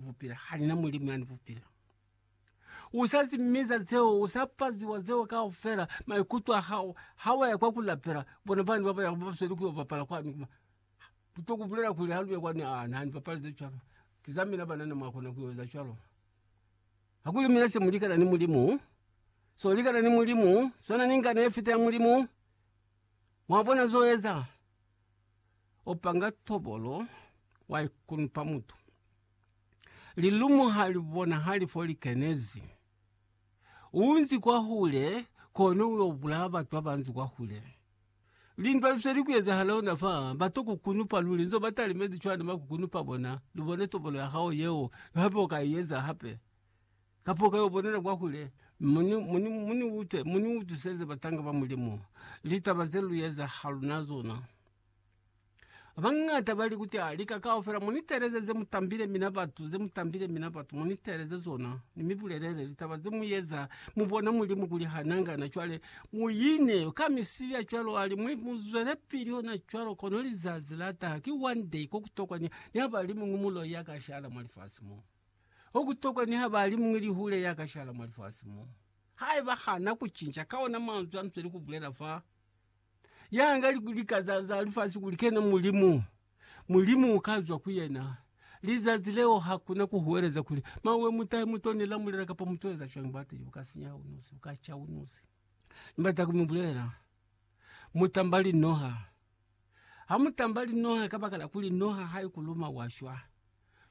Bupila ha ni na Mulimu yani bupila. U sa zimiza zeo, u sa paziwa zeo kaufela, maikuto a hao ha wa ya kwa ku lapela, bona bani ba ba ya ba sweli ku yo bapala kwani kuma. Ku to ku bulela kuli ha lu ya kwani, Aa, na ni bapali ze cwalo. Ki za mina banana mwa kona ku yo eza cwalo. Hakuli mina se mu likana ni Mulimu, se u likana ni Mulimu, swana ni ngana ye fita ya Mulimu. Mwa bona zo eza? U panga tobolo, wa ikunupa mutu. Lilumu ha li bonahali fo li kenezi. U nzi kwahule, kono u yo bulaya batu ba ba nzi kwahule. Lindwa li sweli ku ezahala ona fa, ba to ku kunupa luli. Nzo ba talimezi cwani ba ku kunupa bona? Lu bone tobolo ya hao yeo, hape u ka i eza hape. Kapo ka yo bonela kwa hule, mu ni utwiseze batanga ba Mulimu litaba ze lu eza ha lu na zona. Bañata ba li kuti, Ah, lika kaufela mu ni teeleze ze mu tambile mina batu, ze mu tambile mina batu, mu ni teeleze zona, ni mi bulelele litaba ze mu eza, mu bone Mulimu kuli ha na ngana. Cwale, mu ine ka misili ya cwalo, ali, mu zwelepili ona cwalo, kono lizazi la taha, ki one day, ko ku tokwa ni, ni ha ba li muñwi muloi ya ka shala mwa lifasi mo. Okutokwa niha bali muñwi lihule ya ka shala mwa lifasi mo, haiba hana kucinca ka ona manzwi anzweli kubulela fa ya nga lika za, za lifasi kuli kena Mulimu, Mulimu uka zwa ku yena. Lizazi leo hakuna kuhuweleza kuli mawe mutahe muto ni lamulela kapa muto eza cwani batili buka sinya unusi, buka ca unusi. Ni bata ku mi bulela, mutamba linoha. Ha mutamba linoha kabakala kuli noha haikuluma wa shwa.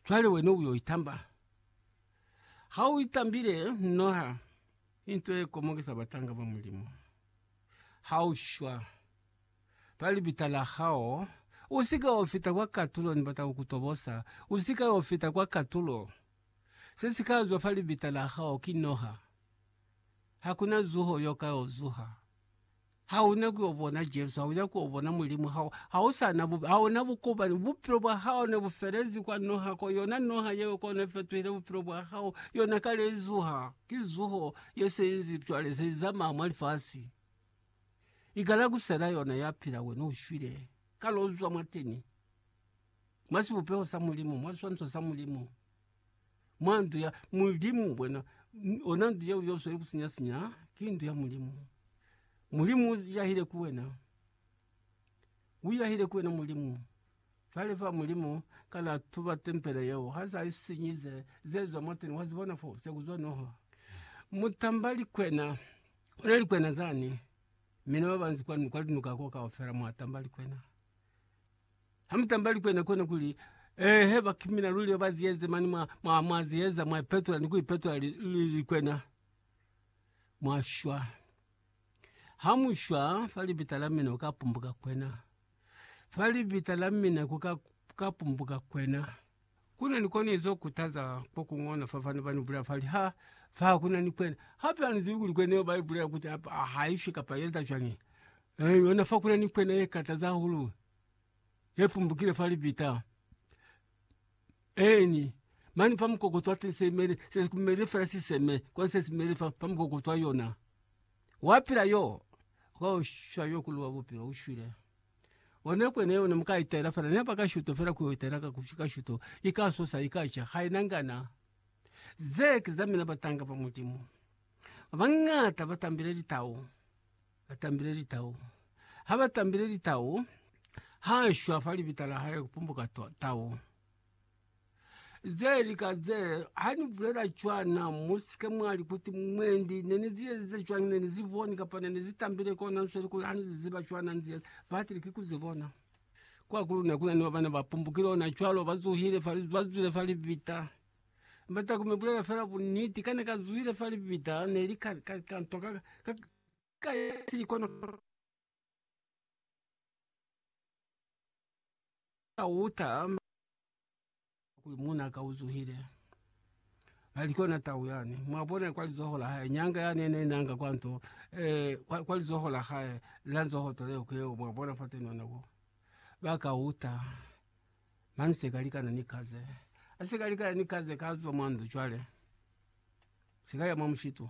cwale wena u yo itamba. Ha u itambile, noha into ye komokisa batanga ba Mulimu. Ha u shwa fa libita la hao, u si ka yo fita kwa katulo, ni bata ku ku tobosa, u si ka yo fita kwa katulo. Se si ka zwa fa libita la hao ki noha. Ha ku na zuho yo ka yo zuha. Ha u na ku yo bona Jesu, ha u na ku yo bona Mulimu, ha, ha u sa na bupe, ha u na bukopani. Bupilo bwa hao ne bu felezi kwa noha ko, yona noha yeo ko ne fetuhile bupilo bwa hao, yona kale i zuha. Ki zuho ye se inzi cwale, se i zamaya mwa lifasi. I kala ku sela yona ya pila, wena u shwile. Kale u zwa mwateni, mwa sibupeho sa Mulimu, mwa siswaniso sa Mulimu. mwa ndu ya Mulimu bwena ona ndu yeo yoswele kusinya sinya ki ndu ya Mulimu. Mulimu yahile ku wena. Uyahile ku wena Mulimu. Jwale fa Mulimu kana tuba tempele yeo ha sa isinyize zezwa mwateni wa zibona fo se kuzwa noha. Mutamba likwena ona likwena zani mina babanzi kwa nuka nuka ko kaufela mwatamba likwena. Hamutambali kwena kwena kuli eehe bakimina luli baziyeze mani mwa mwa mwa ziyeza mwa ipetola ni kuipetola li, li, li kwena mwashwa hamushwa fa libita la mina uka pumbuka kwena fa libita la mina kuka ka pumbuka kwena. Kuna ni koni zo kutaza ko kungona fa fani bani bula fali ha fa kuna ni kwena hape ani zibi kuli kwena yo bai bulela kuti apa haishwe kapa yeza shwani eeh yona fa kuna ni kwena ye kataza hulu. yepumbukile fa libita eni mani pa mukoko twa tesemele sesi kumele fela siseme kwa sesi mele fa pa mukoko twa yona wapila yo waushwa yo kuluwa bupilo ushwile one kwene one mukai tela fela ne paka shuto fela kuyo tela ka kushika shuto ikasosa ikacha haina ngana ze kizamina batanga pa mulimu. Abang'ata batambile litau. Ba tambile litau. Ha ba tambile litau, ha shwa fa libita la hae ku pumbuka tau. Ze lika ze, ha ni bulela cwana, mu si ke mwa li kuti, Mwendi, ne ni zi ezize cwañi? Ne ni zi boni, kapa ne ni zi tambile ko na nsweli kuli ha ni zi ziba cwana nzi eza. Ba atile, Ki ku zi bona. Kwa ku luna ku na ni ba ba ne ba pumbukile ona cwalo, ba zuhile fa, ba zwile fa libita. Mba taku mi bulela fela buniti, ka ne ka zuhile fa libita, ne li ka, ka, ka ntwa ka, ka, ka, ka ya silikonokono ka uta ma kuli muna ka uzuhile alikona tau yani mwabona kwa lizoho la hae nyanga yani ene nanga kwa nto eh, kwa, kwa lizoho la hae la nzoho tole ukeo mwabona fote nona wo baka uta mani sekalikana ni kaze asikalikana ni kaze kazo mwando chwale sikaya mwa mshitu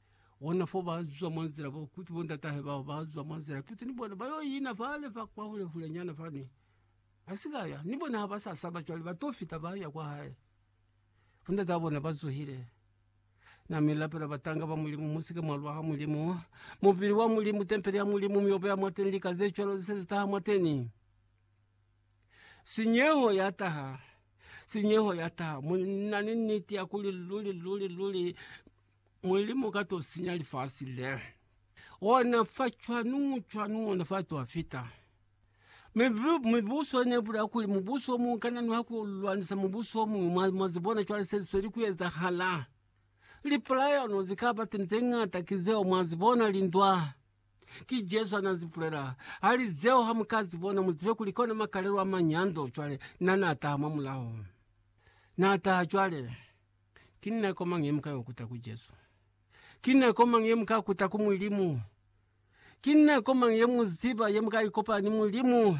Ona fo ba zwa mwa nzila bo kuti bo ndatahe bao ba zwa mwa nzila kuti ni bona ba yo ina fale fa kwa hule hule nyana fani. Ba si ka ya, ni bona ha ba sa saba cwale ba to fita ba ya kwa hae. Bo ndata ba bona ba zuhile. Na mi lapela batanga ba Mulimu, Mu si ke mwa lwa ha Mulimu. Mubili wa Mulimu, tempele ya Mulimu, miobo ya mwateni, lika ze cwalo ze se ze taha mwateni. Sinyeho ya taha, sinyeho ya taha. Mu na ni niti ya kuli luli luli luli Mulimu ka to sinya lifasi le. Ona fa cwanu cwanu ona fa to fita. Mibuso ne bula kuli mubuso o mung kana nuha ku lwanisa mubuso o mung. Mwa zibona cwale se sweli ku ezahala. Lipulayano zi ka ba teni ze ngata ki zeo mwa zibona, lindwa. Ki Jesu ha na zi bulela. Hali zeo ha mu ka zibona, mu zibe kuli ki ona makalelo a manyando. Cwale na, na taha mwa mulao. Na taha cwale. Ki nako mañi ye mu ka ikuta ku Jesu? Ki nako mañi ye mu ka kuta ku Mulimu? Ki nako mañi ye mu ziba ye mu ka ikopanya ni Mulimu?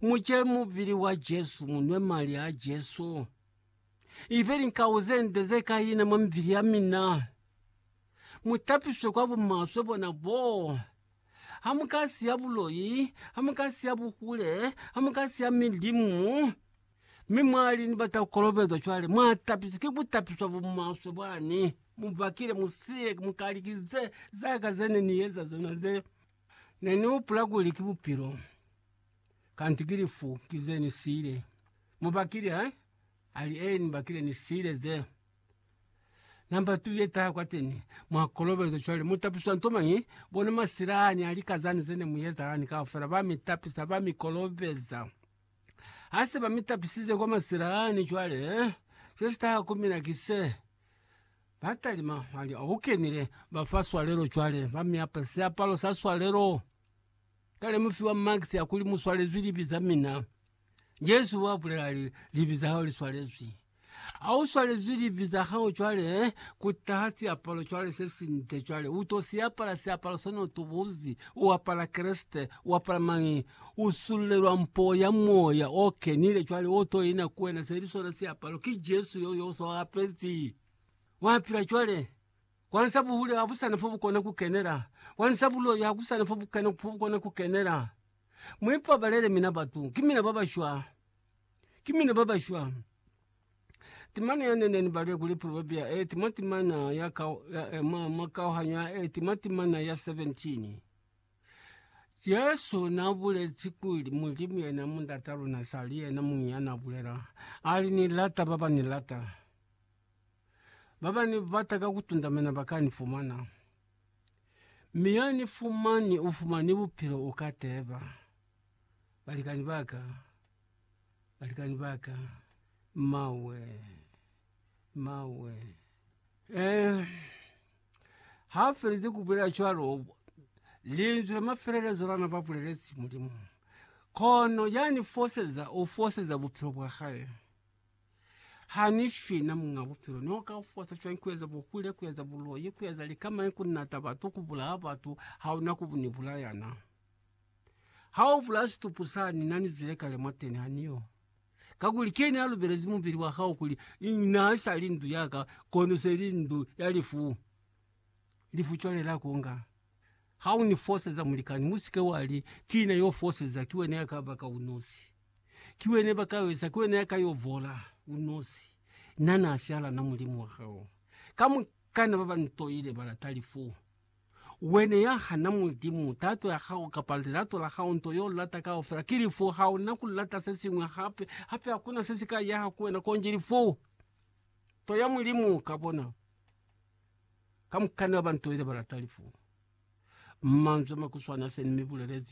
Mu ce mubili wa Jesu, mu nwe mali a Jesu. Ibe linkau ze nde ze ka ina mwa mibili ya mina. Mu tapiswe kwa bumaswe bona boo. Ha mu ka siya buloi, ha mu ka siya buhule, ha mu ka siya milimu. Mi mwa li, Ni bata ku kolobezwa cwale. Mwa tapiswa. Ki butapiswa bo maswe bwani. Mu bakile mu siye, mu kali, Ki ze, za ka ze ne ni eza zona ze. Ne ni hupula kuli ki Bupilo, kanti ki lifu, ki ze ni siile. Mu bakile, he? A li, Ee, ni bakile, ni siile ze. Namba tu ye taha kwateni. Mwa kolobezwa cwale. Mu tapiswa nto mañi? Bona masilani a lika zani ze ne mu eza lani kaufela. Ba mi tapisa, ba mi kolobeza. Ha se ba mi tapisize kwa masila ani cwale, se si taha ku mina ki se, Ba talima mali a u kenile, ba fa swalelo cwale, ba mi apa siapalo sa swalelo. Kale mu fiwa maksi a kuli mu swalezwi libi za mina. Jesu wa bulela a li, Libi za hao li swalezwi. Ha u swalezwi libi za hao cwale, ku taha siapalo cwale se sinde cwale. U to si apala siapalo so ne u tubuzi, u apala Kreste, u apala mañi? U sululelwa mpo ya Moya o Kenile cwale o to ina ku wena, se li sona siapalo. Ki Jesu yo, yo u so apezi. Wa pila cwale. Kwani sa buhule ha bu sa na fo bu kona ku kenela? Kwani sa buloi ha ku sa na fo bu kena, fo bu kona ku kenela? Mu ipabalele mina batu, ki mina ba ba shwa. ki mina baba shwang? Timana ya nene ni bale kuli Proverbia e tima timana ya ka ya ema ma kauhanyo ya e tima timana ya 17. Jesu na bulezi kuli Mulimu yena mundata luna sali yena mungi ya na bulela ali ni lata baba ni lata baba ni bata ka kutunda mina baka ni fumana mi ya ni fumani ufumani bupilo uka teba. Balikani ba ka, balikani ba ka, mmawe, mmawe. Eh, ha a felize ku bulela cwalo, linzwi la mafelelezo la na ba bulelezi Mulimu, kono ya ni foseza, o foseza bupilo bwa hae. Ha ni shwi na muñ'a bupilo, no ka fosa cwañi ku eza buhule, ku eza buloi, ku eza likamañi, ku nata batu, ku bulaya batu, ha una ku ni bulaya na? Ha u vula situpu sani na nizwile kale mwateni ha niyo. Kakuli kene a lubelezi mubili wa hao kuli na isali ndu ya ka, kono se li ndu ya lifu. Lifu cwale la konga. Ha u ni foseza, mulikani, musike wa li, Ki na yo foseza, ki wena ya ka baka unosi. Ki wena ba ka wesa, ki wena ya ka yo vola unosi. Na na sialana Mulimu wa hao. Kamukana ba ba ni toile ba lata lifu. Wena ya hana Mulimu, tato ya hao kapa lilato la hao, nto yo lata kaufela, ki lifu. Ha una ku lata se siñwi hape. Hape hakuna se si ka yaha ku wena konji lifu. Nto ya Mulimu ka bona. Kamukana ba nto ile ba lata lifu. Manzwi a makuswana se ni mi bulelezi.